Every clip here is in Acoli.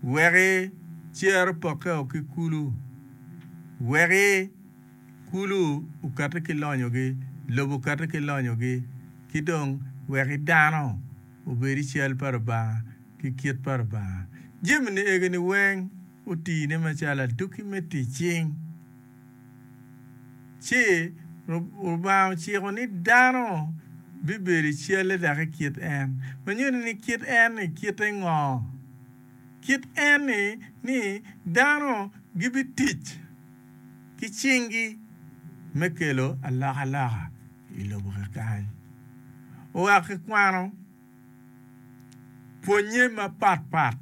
Weki cer opokke o ki kulu. Weki kulu okati ki lonyogi, lobo okati ki lonyogi, ki dong weki dano obed i cal pa Lubanga ki kit pa Lubanga. Jami-ni egi-ni weng otine macalo aduki me tic cing. Ci Lubanga ociko ni dano bibedo i calle dok i kit en, ma nyuto ni kit en-ni kite ngo? Kit en-ni ni dano gibitic ki cinggi me kelo alokaloka i lobo kekany. Wek ikwano pwonnye mapatpat.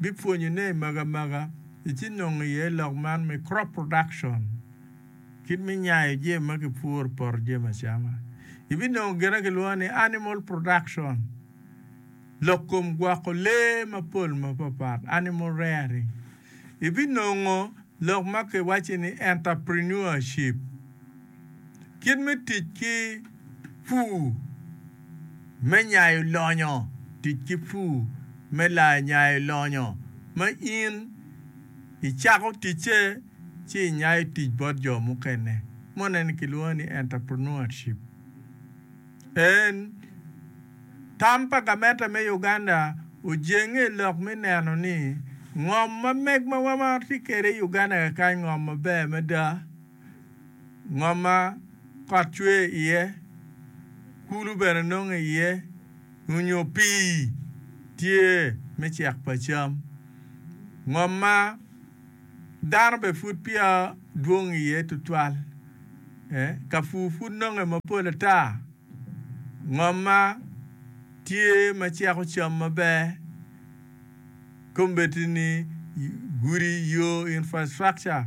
bipwonyone i magamaga i ci nongo iye lok man me crop production, kit me nyayo jemi ma kipuro i poto jemi acama. Ibinongo gin ma kilwongo ni animal production, lok kom gwoko lee mapol mapapat, animal rearing. Ibinongo lok ma kiwacci ni enterprenuership. kit me tic ki pur me nyayo lonyo, tic ki pur me nyayo lonyo ma in icako ticce ci inyayo tic bot jo mukene. Mone-ni kilwongo ni Entrepreneurship. En tam pa gamente me Uganda ojenge i lok me neno ni ngom ma meg ma wamaro tye kwede i Uganda kekany ngom maber mada. ngom ma kot cwer iye, kulu bene nongo iye onyo pii tye me cek pa cam. Ngom ma dano bene pud peya dwong iye tutwal, kapur pud nonge mapol ata, ngom ma tye ma ceko cam maber, kombeddi ni gudi, yo, infrastructure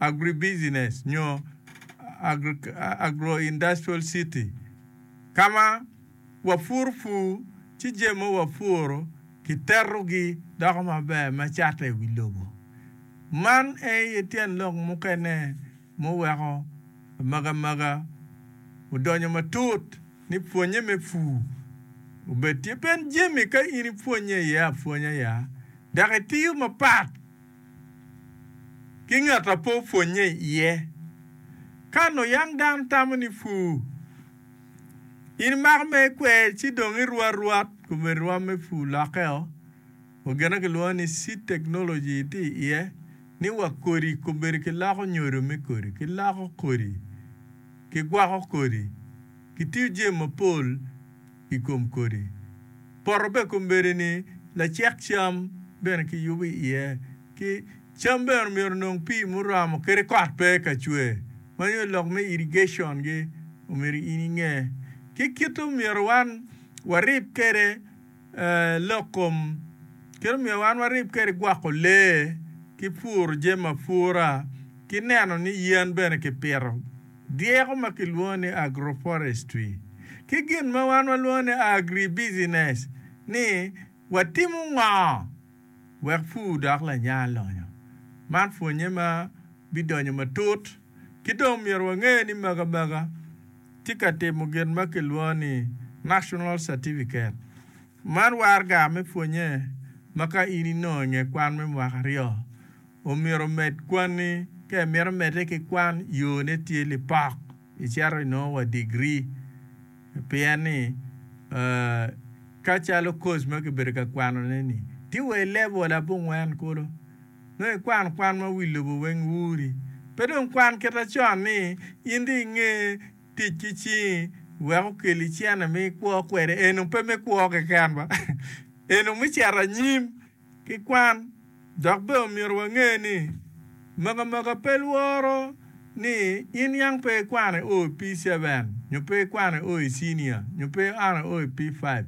agribusiness nyo agroindustrial city ka ma wapuro pur ci jami ma wapuro kiterogi doko maber me cato i wi lobo. Man aye tyen lok mukene muweko amagamaga odonyo matut ni pwonnye me pur obed tye. Pien jami ka in ipwonnye iye apwonya ya dok itiyo mapat, ki ngat a pe opwonnye iye. Ka nongo yam dano tamo ni pur, in imako mere ikwer ci dong iruu arwat kome rwam me pur lokke-o. Wa gin ma kilwongo ni seed technology tye iye, ni wa kodi kobedo kiloko nyodo me kodi, kiloko kodi, kigwoko kodi, kitiyo jami mapol. i kom kodi. Poto bene kombeddi ni lacek cam bene kiyubo i iye ki cam bene omyero onong pii muromo kadi kot pe ka cwer. Mani oyo lok me irrigation gi omyero in inge ki kit omyero wan warib kede lok kom kit omyero wan warib kede gwoko lee ki puro jami apura ki neno ni yen bene kipito. dyeko ma kilwongo ni agroforestry, ki gin ma wan walwongo ni agribusiness ni watimo ngo wek pur dok lanya lonyo. Man pwonye ma bidonyo matut. Ki dong myero wange ni maga maga tye ka timo gin ma kilwongo ni national certificate. Man warga me pwonye ma ka in inongo inge kwan me mwaka aryo, omyero omed kwanni. Ka imito medde ki kwan, yone tye lipok, icito inongo wa digri. Pien ni, ka calo course ma kibedo ka kwanone ni, tye wa i level abongwen kulu, nongo ikwan kwan ma wi lobo weng wuri. Pe dong kwan kita con ni in dong inge tic ki cingi wek okelli cene ma ikwo kwede, eno pe me kwo keken ba, eno me cito anyim. ki kwan. Dok bene omyero wange ni maka maka pe lworo ni in yang pe ikwane o i P7 nyo pe ikwane o i cinia nyo pe iane o i P5.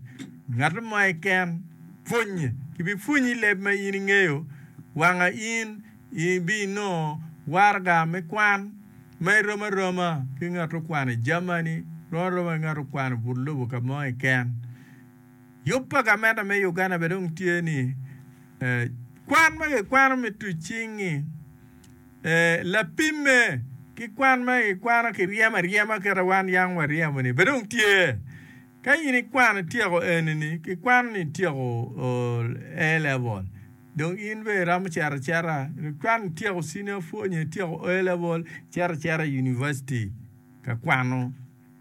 Ngat mo keken pwonye. Kibipwonyi leb ma in ingeyo wanga in ibinongo waraga me kwan ma irom aroma ki ngat okwano i Germany, rom aroma ki ngat okwano but lobo ka mo keken. Yub pa gamente me Uganda bene dong tye ni kwan ma kikwano me tuc cingi lapimme ki kwan ma kikwano ki ryemo aryema kit ma wan yam waryemo ni bene dong tye. Ka in ikwano ityeko eni ni kikwano ni ityeko A level dong in bene iromo cito acita ikwano ityeko senior four nyo ityeko A level icito acita i University ka kwano.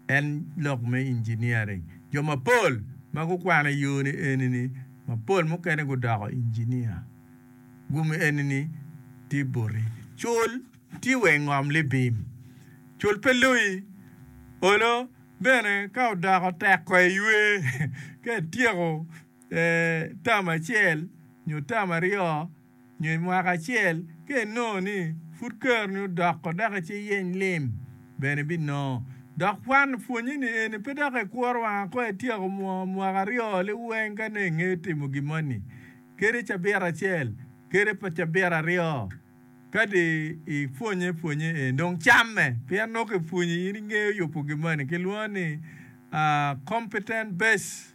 en lok me engineering. Jo mapol ma gukwano i yo-ni eni-ni mapol mukene gudoko engineer. Gumi eni-ni tye boti. Cul tye wa i ngom libim. Cul pe loyi. Olo bene ka odoko tek ko eywe. Ka ityeko tam acel nyo tam aryo Nyo i mwaka acel ka inongo ni pud keroni odoko dok ice iyeny lim bene ibinongo. Dok kwan pwonye ni eni pe dok ikuro wanga ko ityeko mwaka aryo li weng ka nongo ingeyo timo gin moni kede cabit acel kede pa cabit aryo. Kadi ipwonye pwonye eni dong camme pien nongo kipwonyi in ingeyo yubo gin moni kilwongo ni competent base.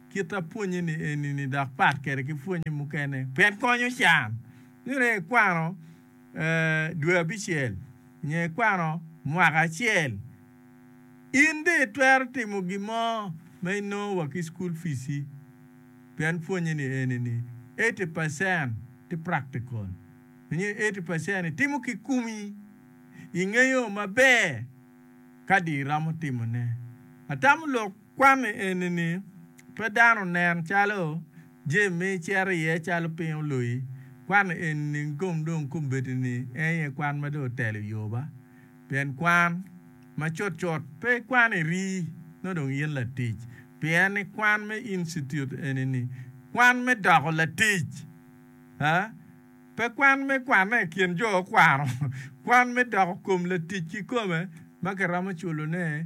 kit apwonye-ni eni-ni dok pat kwede ki pwonye mukene pien konyo can. Nongo ikwano dwe abicel nyo ikwano mwaka acel, in bene itwero timo gin mo ma inongo wa ki cukul pici pien pwonye-ni eni-ni eighty percent tye practical nyo eighty percent itimo ki kumi, ingeyo maber ka dong iromo timone. Atamo lok Kwan eni-ni pe dano nen calo jami ma icito iye calo piny oloyi. Kwan eni-ni kom dong kombeddi ni en aye kwan ma dong otelo yoba. Pien kwan, ma cut cut pe ikwan iri nongo dong in latic, pien ni kwan me Institute eni-ni, kwan me doko latic, aa, pe kwan me kwane i kin jo okwano, kwan me doko kom latic kikome ma kiromo culone.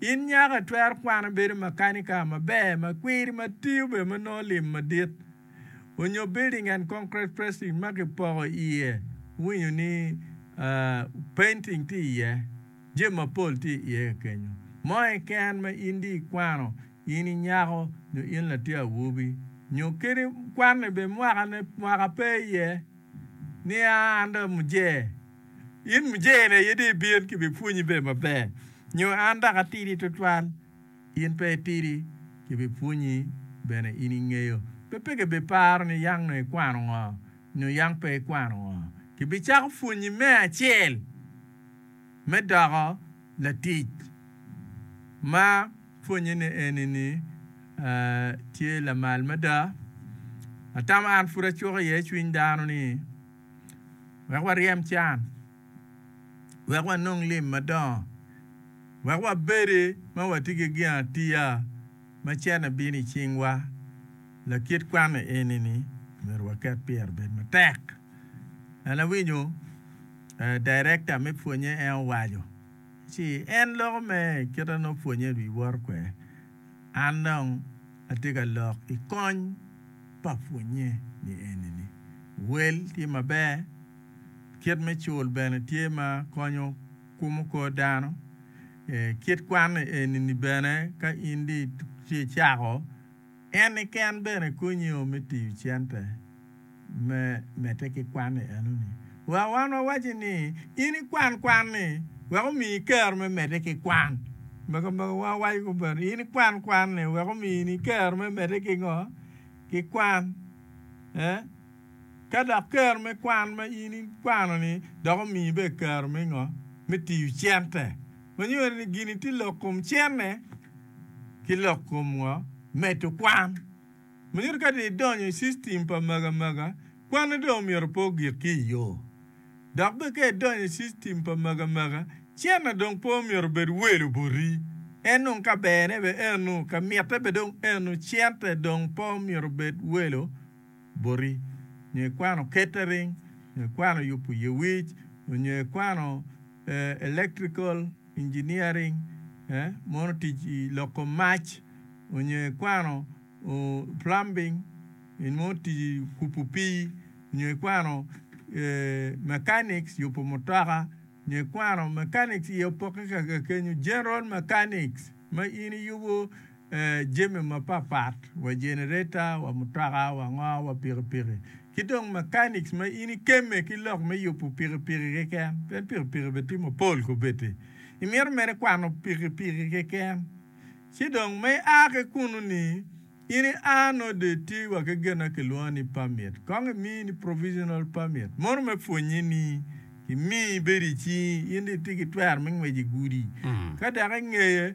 In nyaka itwer kwano bedo makanika maber ma kwiri ma tiyo bene ma nongo lim madit, onyo building and concrete pressing ma ki poko iye winyo ni painting tye iye, jami mapol tye iye kekenyo mo keken ma in di ikwano in inyako nyo in latin awobi nyo kadi kwanni bene mwaka ne mwaka pe iye niya under mujee In mujene aye dong ibin ki bipwonyi bene maber, nyo an dok atidi twatwal? In pe itidi ki bipwonyi bene in ingeyo. Pe peke ibiparo ni yang nongo ikwano ngo nyo yang pe ikwano ngo. Kibicako pwonyi me acel me doko latic ma pwonyene eni ni tye lamal mada. Atamo an pud acuko iye cwiny dano ni. wek waryem can, wek wanong lim madongo, wek wabedi ma watye ki ginatiya ma cente bino i cingwa. Lakit kwan eni-ni myero waket pire obed matek. An awinyo director me pwonye en owaco ci en loko mere kite nongo pwonye wi woro kwede. An dong atye ka lok i kony pa pwonnye ni enini, wel tye maber, kit me cul bene tye ma konyo kumo kor dano. Kit kwan enini bene ka in dong icako, en keken bene konyi o me tiyo cente. Me medde ki kwan i enoni, wa wan wawaci ni in ikwan kwan-ni wek omiyi kero me medde ki kwan. Me kabedo wa wawaco kobeni in ikwan kwan-ni wek omini kero me medde ki ngo? Ki kwan. Eh? Ka dok kero me kwan ma in ikwano-ni dok omiyi bene kero me ngo? Me tiyo cente. Ma nyuto ni gini tye lok kom cente ki lok kom ngo? Medo kwan. Myero ka dong idonyo i system pa magamaga, kwane dong myero pe ogik ki i yoo. Dok bene ka idonyo i system pa magamaga, cene dong pe omyero obed welo boti. En dong ka berne bene eno, ka mitte bene dong eno, cente dong pe omyero obed welo boti. Nyo ikwano catering, nyo ikwano yubo yewic, onyo ikwano electrical. engineering, mono tic i loko mac onyo i kwano plumbing, mono tic i kubo pii nyo i kwano mechanics, yubo mutoka nyo i kwano mechanics, iye opokke kenyo, general mechanics ma in iyubo. jami mapat pat wa jenereta wa mutoka wa ngo wa pikipiki ki dong mechanics ma in ikemme ki lok me yubu pikipiki keken pien pikipiki bene tye mapol kubedi imito mere kwano pikipiki keken ci dong ma i a ki kunu ni in i a nongo dong itye wa ki gin ma kilwongo ni permit kong imi ni provisional permit mono me pwonye ni kimi ibedo icingi in dong itye ki twero me ngwec igudi ka dok ingeye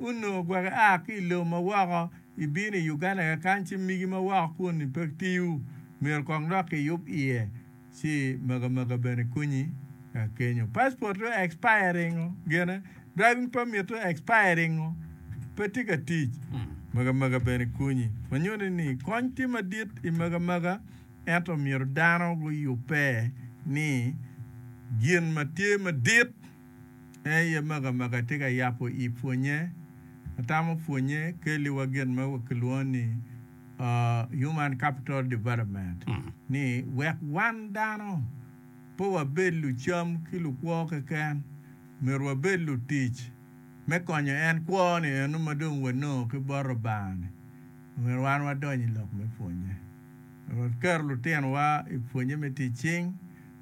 Onongo gwok ia ki i lobo ma woko, ibino i Uganda kakan ci migi ma woko kuni pe tiyo, myero kong dok iyub iye ci makamakaa bene konyi ka kenyo. Passport dong expiring o gine, driving permit dong expiring o, pe tye ka tic, makamakaa bene konyi. Ma nyuto ni kony tye madit i makamakaa ento myero dano guyubbe ni gin ma tye madit. En aye mego amega atye ka yabo i pwonye. Atamo pwonye kelli wa gin ma kilwongo ni Human Capital Development ni wek wan dano pe wabed lucam ki lukwo keken, myero wabed lutic me konyo en kwo ni eno ma dong wanongo ki bot Lubanga ni. Omyero wan wadony i lok me pwonye. Myero waket lutinowa i pwonye me tic cing.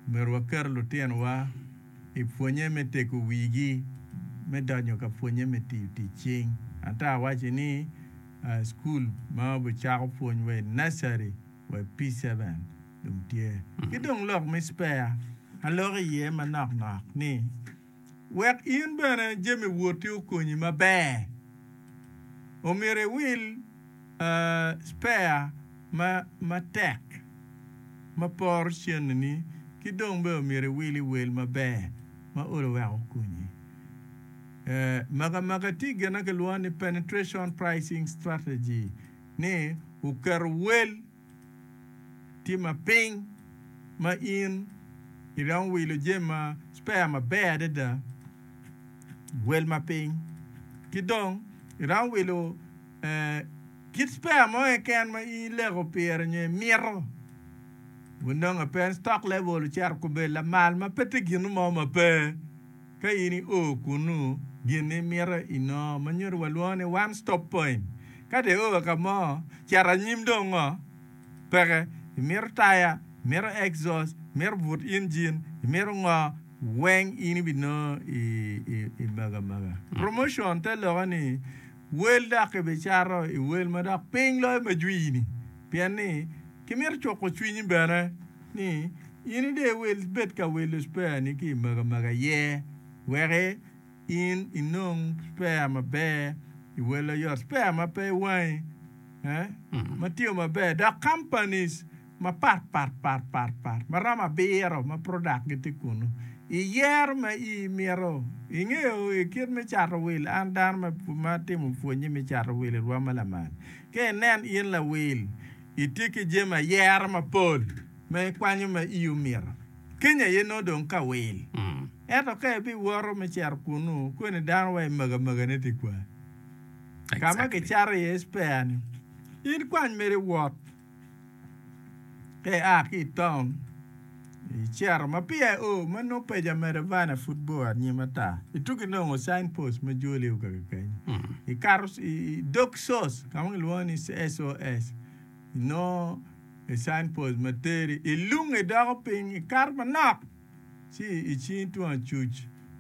Omyero waket lutinowa. i pwonye me tego wigi me donyo ka pwonye me tiyo tic cing. Ento awaco ni cukul ma obicako pwony wa i nursery wa i P-seven dong tye. Ki dong lok me spare, aloko iye manok nok ni wek in bene jami woti okonyi maber, omyero iwil. spare matek ma poro cennini ki dong bene omyero iwili wel maber ma olo wek okonyi. Makamaga tye gin ma kilwongo ni penetration pricing strategy ni oketo wel tye ma piny ma in iromo wilo jami ma spare maber adada, wel ma piny. Ki dong iromo wilo kit spare mo keken ma in ileko pire nyo imito, wun dong ape stock level ocito obedo lamal ma pe tye gin mo ma pe. Ka in io kunnu, gin ma imito inongo ma nyuto walwongo ni one stop point. Ka dong io ka mo, cito anyim dong ngo? Peke, imito taya, imito exhaust, imito but injin, imito ngo, weng in ibinongo i mego amega. Promotion te lokke ni. Wel dok ibicato i wel ma dok piny loyo ma jwi-ni, pien ni kimito cuko cwinyi bene ni in ide iwel ibed ka wilo cpeani ki i magamaga iye, wek in inong cpea maber i wel oyot, cpea ma pe i wangi, ma tiyo maber, dok companies. mapat pat pat pat pat ma romo abiro ma product gi tye kunu i yero ma i mito i ngeyo i kit me cato will an dano ma ma timo pwonye me cato will i rwom ma lamal ka i nen in lawil i tye ki jami ayero mapol ma i kwanyo ma i omito Kenya aye nongo dong ka will ento ka i bi woto me cito kunu kweni dano wa i maga maga ne tye kwar ka ma ki cato iye spare ni in kwany mere wot. Ka ia ki i taun, icito ma peya io ma nongo peja medo van a pud bor anyim ata. Itugi nongo sign post ma joli io kaki kany. Ikato i dog sos ka ma kilwongo ni SOS. Inongo sign post ma teri. Ilunge idoko piny, ikato manok. Ci icing tung acuc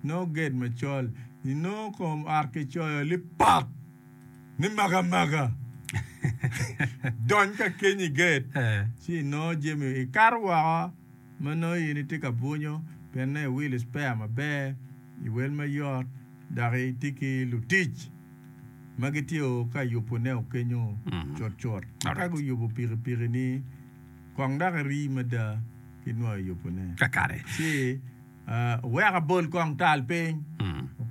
inongo gate macol, inongo kom ot kicoyo lipak ni maka maka. Dony ka keny i gate ci inongo jami ikato woko ma nongo in itye ka bwunyo pien nongo iwilo spare maber, iwel mayot dok itye ki lutic ma gitye o ka yubune o kenyo cut cut. Ka guyubo pikipikini. Kong dok iri mada ki nwa yubone. Kakare. Ci owek abol kong tal piny.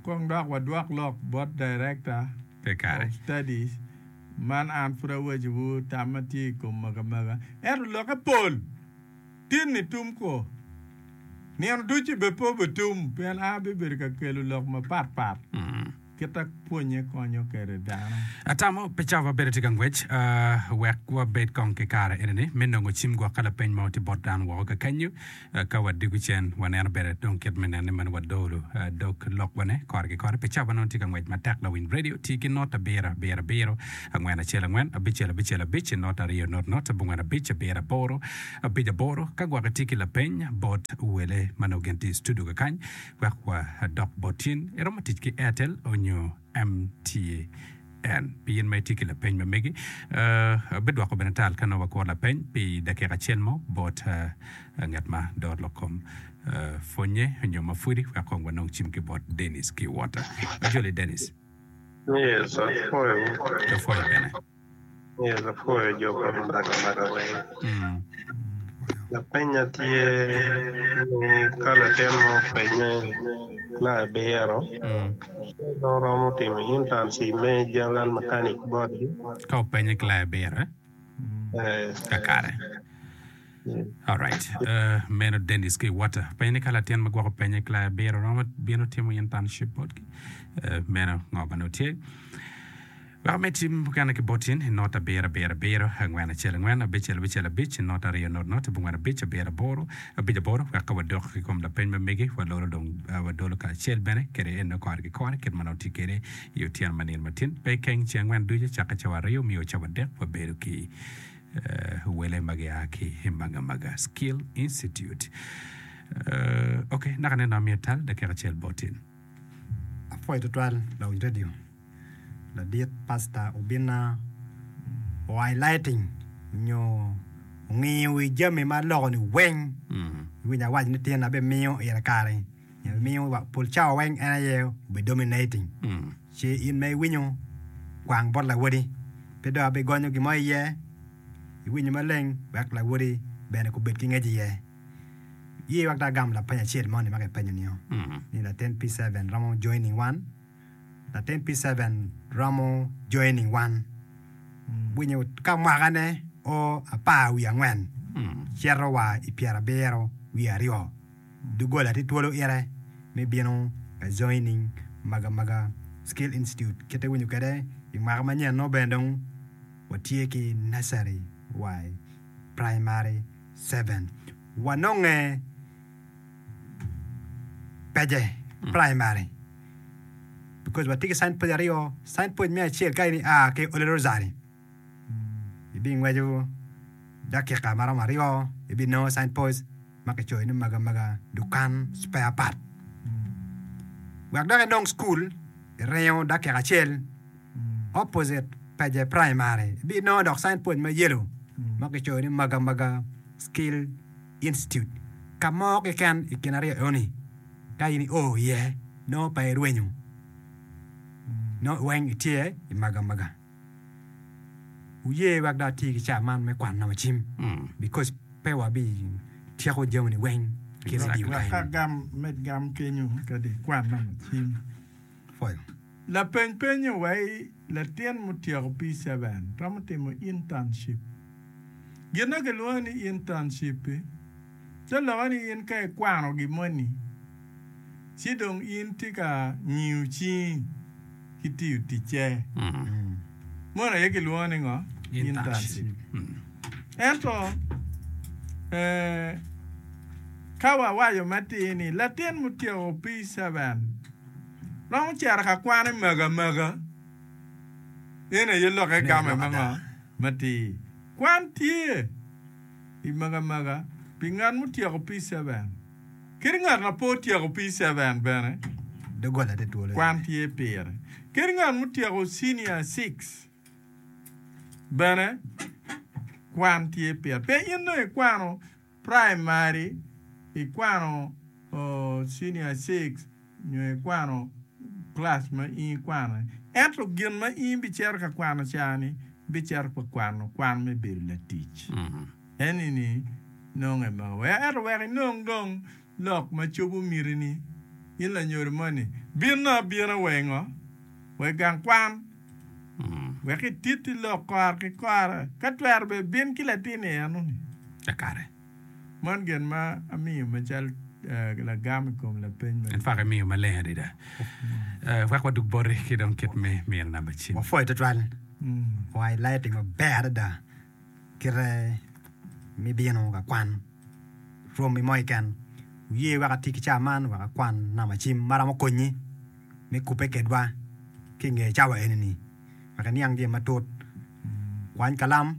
Kong dok wadwok lok bot Director Kakare. of Studies man an pud awaciwu tam ma tye i kom magamaga. Ento lokke pol tin-ni tum kwo. Nino ducu bene pe obitum pien an abibedo ka kelo lok mapatpat. Kit ma pwonnye konyo kwede dano. Atamo pi cawa ma bedo tye ka ngwec wek wabed kong ki kare eni ni me nongo cim gwok ka lapeny mo tye bot dano woko kakenyu. Ka wadiko cen, waneno bene dong kit me nen ni meno wadolo dog lokwane kore ki kore pi cawa ma nongo tye ka ngwec matek. Lawiny redio ti ki not abiro abiro abiro, angwen acel angwen, abicel abicel abic, not aryo not not, abongwen abic, abiro aboro abic aboro. Ka gwok itye ki lapeny bot wele ma nongo gin tye i studio kakany, Wek wa dok bot in, iromo tic ki Airtel onyo MTN? Pi in ma itye ki lapeny ma megi, abidwoko bene tal ka nongo wakuro lapeny pi dakika acel mo bot ngat ma dor lok kom pwonye onyo ma pwodi wek kong wanong cim ki bot Dennis ki Walter. Ajoli Dennis. Yes, apwoyo wu. Apwoyo bene. Ee, lapor i jo pa Lubaga mada weng. Lapenya tye ni ka latin mo openye na ebiro, en dong romo timo internship me general mechanic botgi. Ka openye ki la ebiro, eh? Ee. Kakare. Alright, meno Dennis ki Water. Penye ni ka latin ma gwoko penye ki laya abiro romo bino timo internship botgi. Meno ngo ma nongo tye. Weko me tim mukene ki bot in, inot abiro abiro abiro, angwen acel angwen, abicel abicel abic, inot aryo not not, abongwen abic, abiro aboro, abic aboro, wek ka wadok ki kom lapeny ma megi, walolo dong wadolo kacel bene kede eno kore ki kore kit ma nongo tye kede i otyeno ma nino matin. Pe ikeng, ce angwen ducu, cakke cawa aryo, miyo cawa adek, wabedo ki Wele ma gia ki i Magamaga Skill Institute. Ok, naka neno amiyo tal dakika acel botin. Apwoyo tutwal Lounge Radio. Ladit pasta obinna o highlighting nyo ongiyo wi jami ma loko-ni weng. Iwinyo awaco ni tyen abimiyo ira kare-ni. Emiyo wa pol cawa weng en aye obi dominating. Ci in ma iwinyo kwang bot lawodi, pe dong abi gonyo gin mo iye. Iwinyo maleng wek lawodi bene kubed ki ngec iye. Ye wek dong agam lapeny acel moni ma kipenyo nio ni latin P7 romo joining wan? Latin P7 romo joining wan winyo ka mwaka ne o apar wiye angwen cito wa i pyerabiro wiye aryo. Doggola tye twolo ite me bino ka Joining Magamaga Skill Institute kite winyo kede i mwaka ma nyen nongo bene dong wa tye ki Nursery wa i Primary seven wa nonge Peje Primary because wa tye ki Sign Post aryo Sign Post me acel ka in i a ki Ole Rosary Ibingweco dakika ma romo aryo, ibinongo sign post ma kicoyo ni Maga Maga Dukan Spare Part. Wek dok inong cukul, iringo dakika acel opposite Peje Primary, ibinongo dok sign post ma yelo ma kicoyo ni Maga Maga Skill Institute. Ka mo keken i kin aryo enoni ka in io iye, nongo pe irwenyo, nongo weng itye i Maga Maga. Wuye wek dong ati ki caa man me kwan nongo cim, because pe wabi tyeko jami-ni weng ki redio kany. Laka gam me gam kenyo kadi kwan nongo cim. Pwoyo. Lapeny penyo wai, Latin mutyeko P-seven romo timo internship? Gin-na kilwongo ni internship-pi. Te lokke ni in ka ikwano gin moni, ci dong in tye ka ngiyo cingi ki tiyo ticce. Moni aye kilwongo ni ngo? Internship. Ento ka wawaco matir ni latin ma otyeko P-seven romo cito ka kwane magamaga, eno aye lokke game me ngo? Matir. Kwan tye. i magamaga pi ngat mutyeko P-7. Kadi ngat ma pe otyeko P-7 bene kwan tye pire. Kadi ngat mutyeko Cinia Six bene kwan tye pire. Pe in dong ikwano praimari, ikwano Cinia Six. nyo ikwano kilac ma in ikwano-ni, ento gin ma in ibicito ka kwano cani, ibicito ka kwano kwan me bedo latic. Eni-ni nonge ma weko ento wek inong dong lok ma cobo mitini. In lanyodo moni, binno abina wa i ngo? Wa i gang kwan, wek ititi lok kora ki kora, ka twero bene bin ki latin i eno-ni. Man gin ma amiyo macalo lagam i kom lapeny ma. En twak imiyo maleng adada. Wek wadug boti ki dong kit me miro namba cim. Wapwoyo tutwal. Wanga ilaya tic maber adada kite ma ibino ka kwan romi mo keken. Wuye wek ati ki cawa man wek akwan namba cim ma romo konyi me kubbe kedwa ki inge cawa eni-ni wek iniang jami matut. Kwany kalam.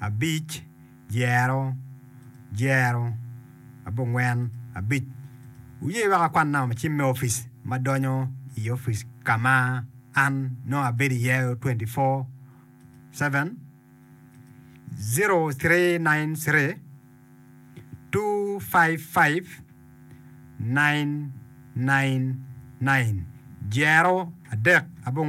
abic, dyero, dyero, abongwen, abic. Wuye wek akwanna cim me opic ma donyo i opic ka ma an nongo abedo iye 24/7, 0393-255-999, dyero, adek, abongwen.